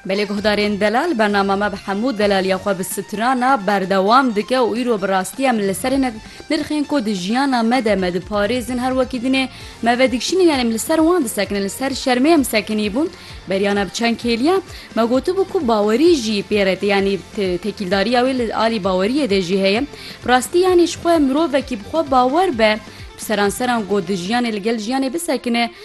Belê guhdarên delal bernama me bi hemû delaliya xwe bi sitirana berdewam dike û îro bi rastî em li ser hinek nirxên ku di jiyana me de me diparêzin her wekî din ê me vedikşînin yanî em li ser wan disekinin li ser şermê em sekinîbûn beriana bi çend kêliya me gotibû ku bawerî jî pê re tê yanî tekîldariya wê li alî baweriyê de jî heye bi rastî yanî ji xwe mirovekî bi xwe bawer be bi seranseran ku di jiyanê li gel jiyanê bisekine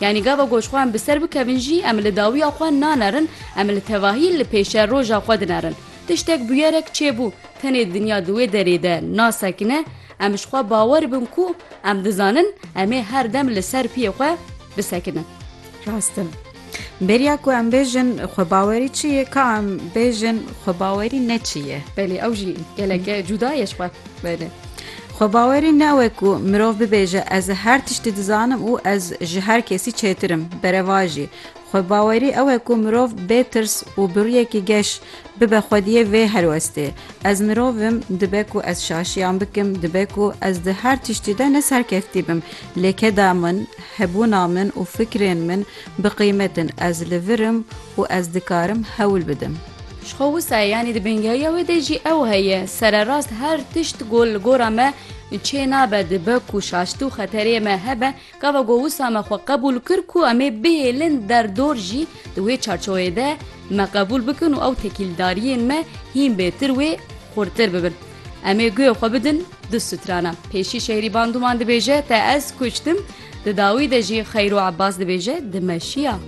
Yanî gava ku ji xwe em bi ser bikevin jî em li dawiya xwe nanerin, em li tevahî li pêşe roja xwe dinerin. Tiştek bûyerek çêbû, tenê dinya di wê derê de nasekine, em ji xwe bawer bin ku em dizanin em ê her dem li ser piyê xwe bisekinin. Rast e. Bêriya ku em bêjin xwebawerî çi ye, ka em bêjin xwebawerî ne çi ye. Belê ew jî gelek e cuda ye ji xwe. Belê. Xwe bawerî newe ku mirov bibêje ez her tiştî dizanim û ez ji her kesî çêtir im. Berevajî. Xwe bawerî ew e ku mirov bê tirs û bi rûyekî geş bibe xwediyê vê helwestê. Ez mirov im, dibe ku ez şaşiyan bikim, dibe ku ez di her tiştî de ne serkeftî bim. Lê keda min, hebûna min û fikrên min bi qîmet in. Ez li vir im û ez dikarim hewl bidim. Ji xwe wisa ye yanî di bingehîya wê de jî ew heye. Sererast her tişt ku li gora me çê nabe dibe ku şaştî û xeterê me hebe, gava ku wisa me xwe qebûl kir ku em ê bihêlin derdor jî di wê çarçoweyê de me qebûl bikin û ew tekîldariyên me hîn bêtir wê xurtir bibin. Em ê guyê xwe bidin du strana. Pêşî Şehrî Bandûman dibêje te ez kuştim, di dawî de jî Xeyro Ebbas dibêje di me şiya.